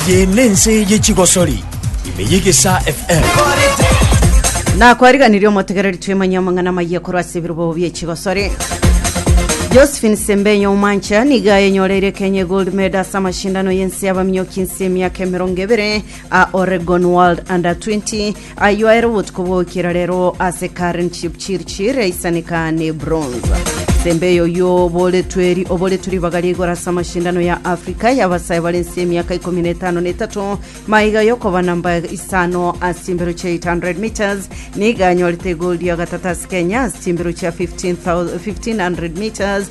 Eye nense ye chigosori ime yegesa FM. nakwariganirie omotegereri twemanyia amang'ana amayia korwa ase ebirobo bie chigosori josephine sembenyo omancha niga enyoreire kenya gold medal ase amashindano y'ense y'abaminyoki nse emiaka emerongo ebere a oregon world under 20 Ayio aere obotuko bw'okira rero ase Karen Chipchirchir aisaneka ne bronze. Sembe eyo y'oboretwe eri oboretwe ribaga ria igoro ase amashindano ya Afrika y'abasae bare ense y'emiaka ikomi na etano na etato maiga y'okoba namba isano ase chimbero chia 800 meters nigo anyorete egoldi ya gatato ase Kenya ase chimbero chia 15,000 1500 meters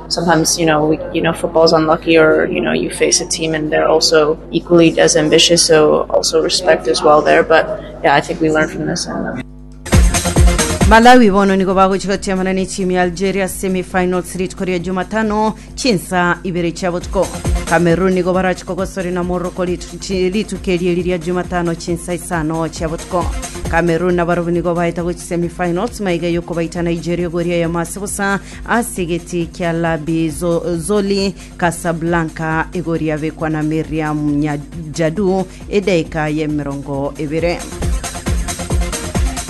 Malawi bono nigo bagochia gotiamana ne timu ya Algeria ase semi finals rituko ria Jumatano chinsaa ibere chia botuko. Cameroon nigo barache kogosori na Morocco rituko erieri ria Jumatano chinsaa isano chia botuko. Cameroon nabarabwo nigo baeta gochia semi finals maiga yokobaita Nigeria gori eyemo ase bosa Ase egetii kia Labi Zoli, Kasablanka, igori yabekwa na Miriam Nyajadu edaika y'emerongo ebere.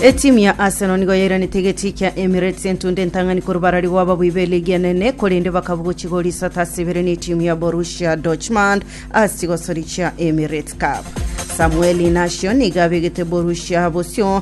Etimu ya Arsenal nigo yairanete egetii kia Emirates entunda entang'ani korwa barari gw'ababui b'eligi enene korende bakabugo chigori isato ase ibere n'etimu ya Borussia Dortmund ase chigosori chia Emirates Cup. Samuel Inacio nigo abegete Borussia bosio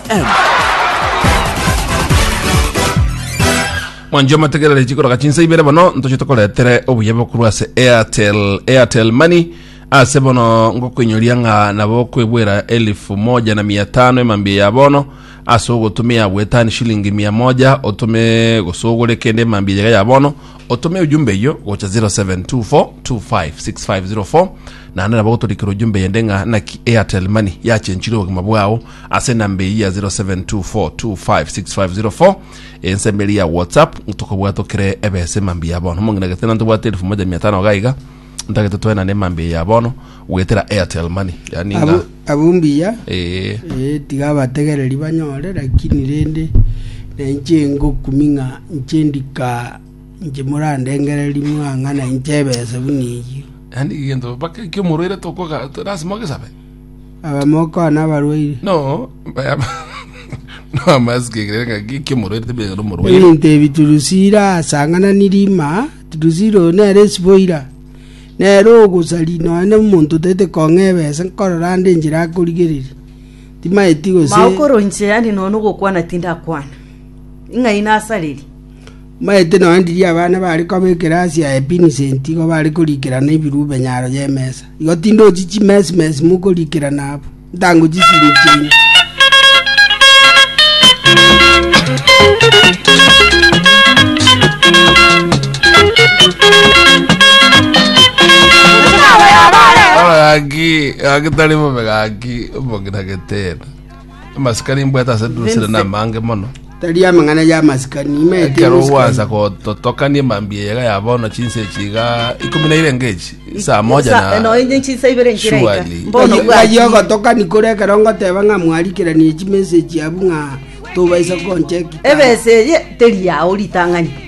mwanche omategerere chikoroka chinsa ibere bono ntoche tokoretere obuya bokorwa ase airtel airtel money ase bono ngokoinyoria ng'a nabo okwebwera elifu moja na mia tano emambia ya bono ase ogotumia bwetani shilingi mia moja otume gose ogore kende emambia yaga ya bono otume ujumbe eyo gocha 0724256504 naende nabo gotorikera ujumbe yende ng'a naki airtel money yachenchire obogima bwao ase enamba eyio ya 0724256504 ensemo eria ya whatsapp tokobwata okere ebesa emambia ya bono omong'ina gete nante bwate elfu moja mia tano gaiga ntagete toenane emambia ya bono goetera airtel money yani Abwo- ng'a abwo mbuya eh, Eh, tiga abategereri banyore lakini rende nainche ngokumi ng'a inche ndika inche morandengereri muna ng'a nainche ebese buna eyio yani gento baka kiomorwaire tokoga lazima ogesabe Abamoko na abarwaire. No, noamasuki ekero ng'a giki omorwaire tebire ekero omorwaire. Ebinto ebi Turusira asang'ananirie ima, Turusira oyo nere esiboira, nere ogosari nonye na omonto otaete kong'a ebesa, nkorora ande enchera akorigereria. Timaeti gose Mao koro inche yande nonya nogokwana tindakwana, ing'ai nasareria? Mbaete nonya ndirie abana baare koba ekerasi ya epinisenti igo bare korikerana ebiruube nyaro y'emesa. Igo tindochi chimesi-mesi mokorikerana abwo, ntango chisini chiaino. Omogaki gaki tari bobe gaki, omogira getera. amasikani imbwete ase dusire na amange mono Tari amang'ana ya masikani imaete ekero masikani. gwansa gototokania mambia eyega ya bono chinsa echiga ikomi na ire ngechi saa moja Sa- na no, inye chinsa ibere nkira ika. Surely. Mbono Ng'ayi- bwati. ng'ayi ogotokani kore ekero ngoteba ng'a mwarikiranie chimeseji abwo ng'a tobaisa konchekika ebesa eye teri yao ritang'ani